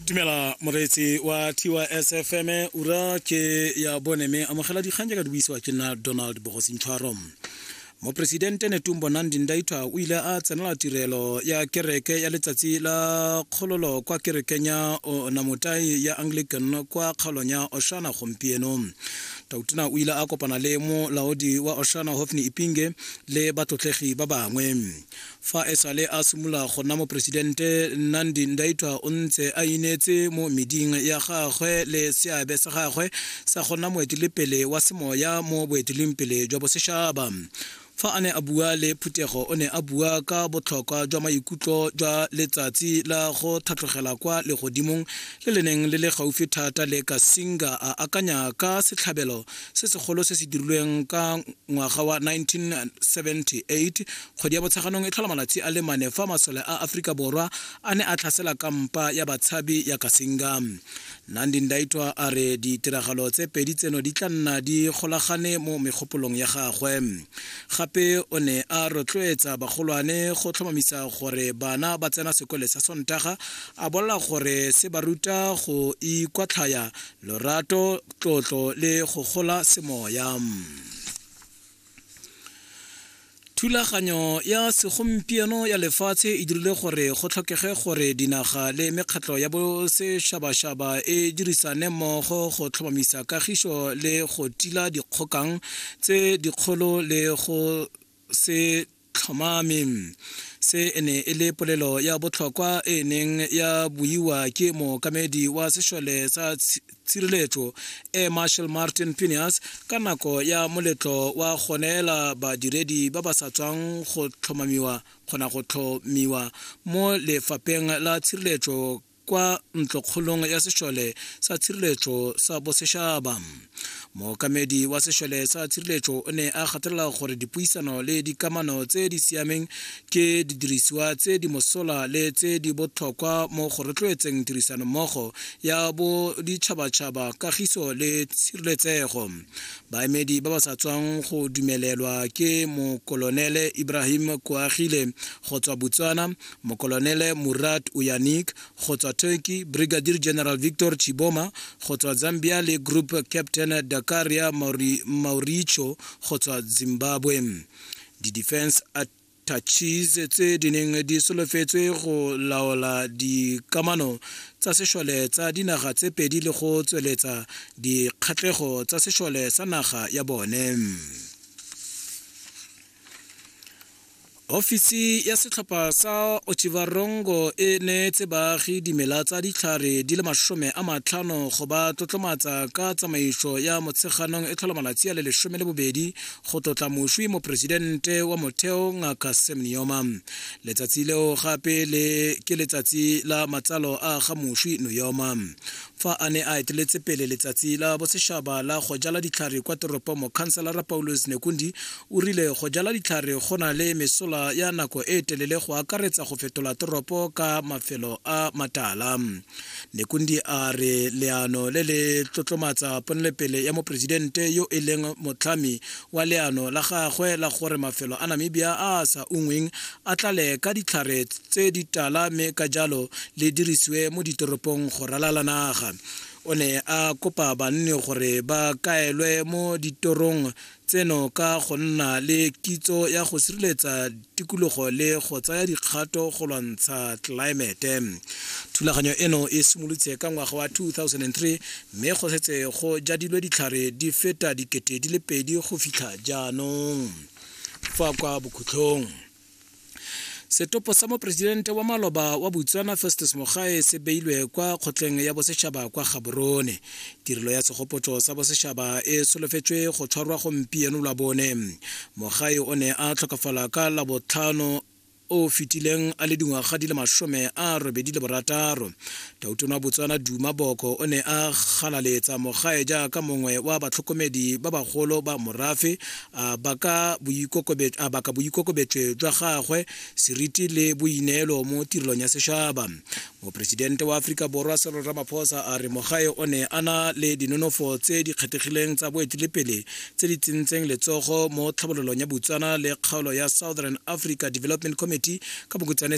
tumela moreetsi wa tys fm ura ke ya bone mme amogela dikgang jaaka di buisiwa ke nna donald bogosintshwaro moporesidente netumbo nandi ndaitwa o ile a tsenela tirelo ya kereke ya letsatsi la kgololo kwa kerekeng ya onamotai ya anglican kwa kgaolong ya oshana gompieno tautona o ile a kopana le molaodi wa oshana hofni ipinge le batlotlegi ba bangwe Fa e sale a simolola go nna moporesidente, Nandi Ndaitwah o ntse a ineetse mo meding ya gagwe le seabe sa gagwe sa go nna moetelepele wa semoya mo boeteledipele jwa bosešaba. Fa a ne a bua le phuthego o ne a bua ka botlhokwa jwa maikutlo jwa letsatsi la go tlhatlogela kwa legodimong le le neng le le gaufi thata le Kasinga a akanya ka setlhabelo se segolo se se dirilweng ka ngwaga wa 1978 Kgwedi ya Botsheganong e tlhola malatsi a le mane fa masole a Aforika Borwa a ne a tlhasela kampa ya batshabi ya Kasinga. Nandi Ndaitwa a re ditiragalo tse pedi tseno di tla nna di golagane mo megopolong ya gagwe. Gape o ne a rotloetsa bagolwane go tlhomamisa gore bana ba tsena sekole sa Sontaga, a bolela gore se ba ruta go ikwatlhaya, lorato, tlotlo le go gola semoya. thulaganyo ya segompieno ya lefatshe e dirile gore go tlhokege gore dinaga le mekgatlho ya bosešabašaba e dirisane mmogo go tlhomamisa kagišo le go tila dikgokang tse dikgolo le go se tlhomame se e ne e le polelo ya botlhokwa e neng ya buiwa ke mookamedi wa sešole sa tshireletso e marshal martin pinias ka nako ya moletlo wa go neela badiredi ba ba sa tswang go tlhomamiwa kgona go tlhomiwa mo lefapheng la tshireletso kwa ntlokgolong ya sešole sa tshireletso sa bosešaba mookamedi wa sešole sa tshireletso o ne a gatelela gore dipuisano le dikamano tse di siameng ke didirisiwa tse di mosola le tse di botlhokwa mo go rotloetseng tirisanommogo ya boditšhabatšhaba kagiso le tshireletsego baemedi ba ba sa tswang go dumelelwa ke mokolonele ibrahim koagile go tswa botswana Mokolonele Murat Uyanik go tswa Turkey, Brigadier General Victor Chiboma go tswa Zambia le Group Captain Dakaria Mauri, Mauricio go tswa Zimbabwe. Di-defense attaches tse di neng di solofetswe go laola dikamano tsa sešole tsa dinaga tse pedi le go tsweletsa dikgatlego tsa sešole sa naga ya bone. ofisi ya setlhopha sa ochivarongo e neetse baagi dimela tsa ditlhare di le masome a matlhano go ba tlotlomatsa ka tsamaiso ya motsheganong e tlhola malatsi a le lesome le bobedi go tlotla moswi moporesidente wa motheo ngaka sam neoma letsatsi leo gape le ke letsatsi la matsalo a ga moswi neoma fa a ne a eteletse pele letsatsi la bosešaba la go jala ditlhare kwa toropong mokhanselara paulus nekundi O rile go jala ditlhare go na le mesola ya nako e telele go akaretsa go fetola toropo ka mafelo a matala. Nekundi a re leano le le tlotlomatsa ponelepele ya moporesidente yo e leng motlhami wa leano la gagwe la gore mafelo a Namibia a a sa ungweng a tlale ka ditlhare tse di tala mme ka jalo le dirisiwe mo ditoropong go ralala naga. O ne a kopa banni gore ba kaelwe mo ditorong tseno ka go nna le kitso ya go sireletsa tikologo le go tsaya dikgato go lwantsha tlelaemete thulaganyo eno e simolotse ka ngwaga wa 2003 mme go setse go jadilwe ditlhare di feta dikete di le pedi go fitlha jaanong fa kwa bokhutlhong setopo sa moporesidente wa maloba wa botswana festus mogae se beilwe kwa kgotleng ya bosetšhaba kwa gaborone tirelo ya segopotso sa bosetšhaba e solofetswe go tshwarwa gompieno la bone mogae o ne a tlhokafala ka labotlhano o fetileng a le dingwaga di le masome a robedi le borataro Tautona Botswana Duma Boko o ne a galaletsa mogae jaaka mongwe wa batlhokomedi ba bagolo ba morafe a baka boikokobetšwe jwa gagwe seriti le boineelo mo tirelong ya sešaba moporesidente wa aforika borwa Cyril Ramaphosa a re mogae o ne a na le dinonofo tse di kgethegileng tsa boetelepele tse di tsentseng letsogo mo tlhabololong ya Botswana le kgaolo ya Southern Africa Development Committee ka bokutswane